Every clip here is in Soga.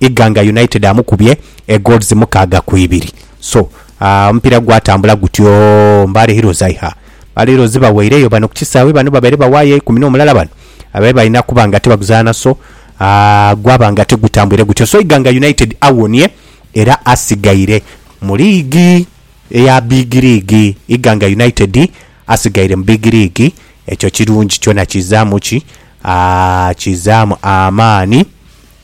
Iganga United amukubye e goals mukaaga ku ibiri. So ah, omupiira gwatambula gutyo. Mbale Heroes ai ha. Mbale Heroes baweireyo bano ku kisaawe bano babaire bawaayo eikumi n'omulala bano abaire balina kuba nga tibaguzaana so ah, gwaba nga tigutambwire gutyo. So Iganga United awonie era asigaire mu liigi eya Big League. Iganga United asigaire mu Big League. Ekyo kirungi kyona kizaamu ki? Ah, kizaamu amaani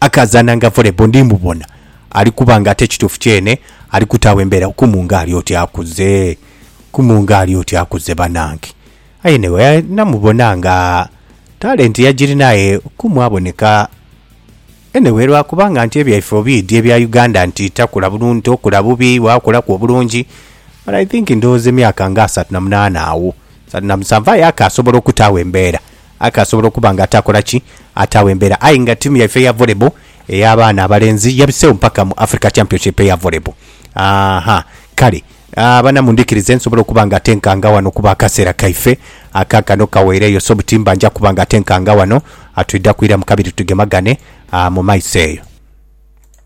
Akaazananga volleyball ndi mubona ali kuba nga ate kituufu kyene ali kutaagho embeera. Okumunga ali oti akuze, okumunga ali oti akuze banange. Aye anyway namubona nga talent yagirina aye Okumu aboneka anyway lwa kuba nga nti ebyaife obiidhi ebya Uganda nti takula bulungi, tokula bubi, wakulaku obulungi but I think ndhoghoza emyaka nga asatu na munaana agho, asatu na musanvu aye akaasobola okutaagho embeera. Aka asobola okuba nga ataakola ki? Ataagho embeera. Aye nga tiimu yaife eya volleyball ey'abaana abalenzi yabiseegho mpaka mu Africa Championship eya volleyball. Aaha, kale abana mundhikirize nsobole okuba nga ate nkanga ghano kuba akaseera kaife akaakano kaweireyo. So butimba nja kuba nga ate nkanga ghano, twidha kwiramu kabiri tugemagane mu maiso eyo.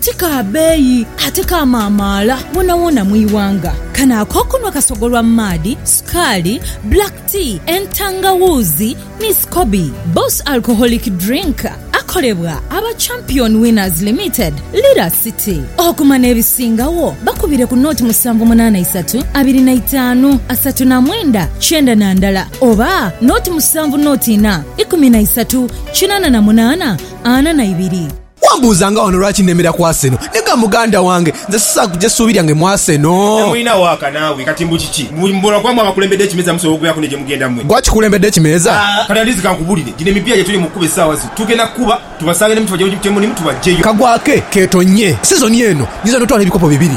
Ti ka beeyi ate ka maamaala wonawona mu ighanga. Kano ak'okunhwa kasogolwa mu maadhi, sukaali, black tea, entangawuuzi ni scoby. Boss Alcoholic Drink akolebwa aba Champion Winners Limited, Lira City. Okuma n'ebisingagho bakubire ku nooti musanvu munaana isatu abiri na itaanu asatu na mwenda kyenda na ndala oba nooti musanvu nooti ina ikumi na isatu kinaana na munaana ana na ibiri. Wambuuza nga wano lwaki nemera ku Arsenal. Nega muganda wange, nze sisaagh kuja suubi lyange mu Arsenal. Temulina waaka naawe kati mbu kiki? Mbu buli muboolwa kwaamwe abakulembedde ekimeeza musobola okubeeraku ne gye mugenda mmwe? Gwe akikulembedde ekimeeza? Haa kati at least kankubulire, gino emipiira gye tuli mu kukuba essaawa zino tugenda kukuba tubasange ne miti bajje mu gimu kye mulimu tubaggyeyo. Kagwa ke keetonnye sizoni eno nyinza n'otwala ebikopo bibiri.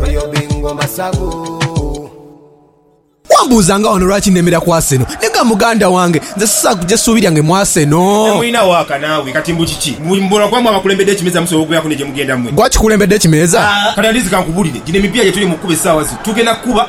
Royal Bingo Masavu. Wambuuzanga wano lwaki nemera ku Arsenal. Nega muganda wange, nze sisobola kuja suubi lyange mu Arsenal. Temulina waaka naawe kati mbu kiki? Mbu mbula kuba mwe abakulembedde ekimeeza musobola okubeeraku ne gye mugenda mwe? Gwe akikulembedde ekimeeza? Kati at least kankubulire, gino emipiira gye tuli mu kukuba essaawa zino tugenda kukuba.